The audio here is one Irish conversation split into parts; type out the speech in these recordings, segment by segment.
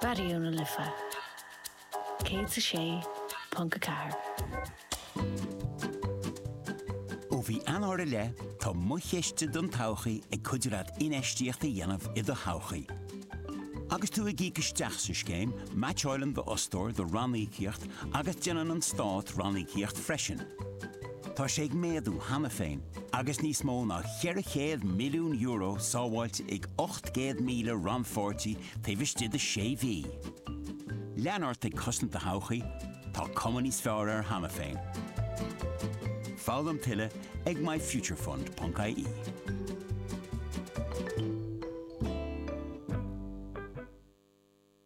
Raidió na Life 106.4. Ó mhí Eanáir i leith, tá Mo Chiste don Todhchaí ag cuidiú leat infheistíocht a dhéanamh i do thodhchaí. Agus tú ag íoc isteach sa scéim, meaitseáileann d'fhostóir do ranníocaíocht agus déanann an Stát ranníocaíocht freisin. Tá sé ag méadú cheana féin agus níos mó ná €400 milliún sábháilte ag 800,000 rannpháirtí taobh istigh de sé mhí. Lean ort ag cosaint do thodhchaí, tá cuma níos fearr air cheana féin. Foghlaim tuilleadh ag myfuturefund.ie.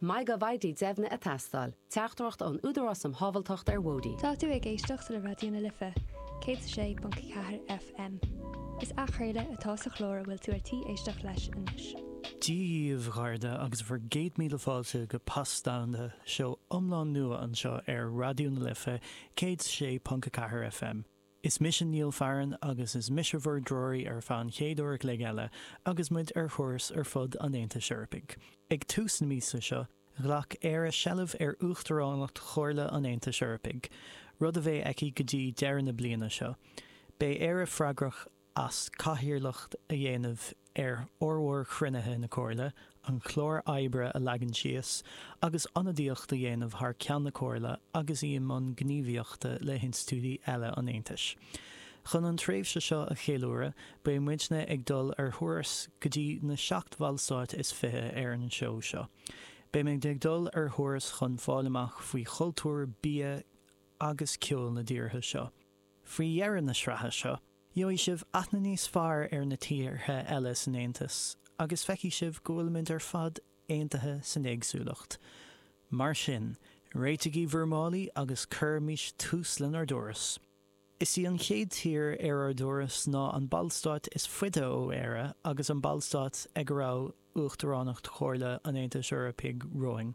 Maith go bhfaighidh deimhne a teastáil. Teachtaireacht ón Údarás um Shábháilteacht ar Bhóithre. Tá tú ag éisteacht le Raidió na Life, 106.4 FM. Is athchraoladh atá sa chlár a bhfuil tú ar tí éisteacht leis anois. Dia bhur mbeatha agus bhur gcéad míle fáilte go Pas Domhanda, seó iomlán nua anseo ar Raidió na Life, 106.4 FM. Is mise Neil Farren agus is mise bhur dtreoraí ar feadh an chéad uair an chloig eile agus muid ar thuras ar fud an Aontais Eorpaigh. Ag tús na míosa seo, ghlac Éire seilbh ar uachtaránacht Chomhairle an Aontais Eorpaigh, rud a bheidh aici go dtí deireadh na bliana seo. Beidh Éire freagrach as cathaoirleacht a dhéanamh ar fhormhór chruinnithe na Comhairle, an clár oibre a leagan síos, agus ionadaíocht a dhéanamh thar ceann na Comhairle agus í i mbun gníomhaíochta le hinstiúidí eile an Aontais. Chun an tréimhse seo a cheiliúradh, beidh muidne ag dul ar thuras go dtí na seacht bhallstáit is fiche ar an seó seo. Beidh muidne ag dul ar thuras chun fáil amach faoi chultúr, bia agus ceol na dtíortha seo. Faoi dheireadh na sraithe seo, gheobhaidh sibh aithne níos fearr ar na tíortha eile san Aontas agus feicfidh sibh go bhfuilimid ar fad aontaithe san éagsúlacht. Mar sin, réitigí bhur málaí agus cuirimís tús lenár dturas! Is í an chéad tír ar ár dturas ná an Ballstát is faide ó Éire agus an Ballstát ag a raibh Uachtaránacht Chomhairle an Aontais Eorpaigh romhainn.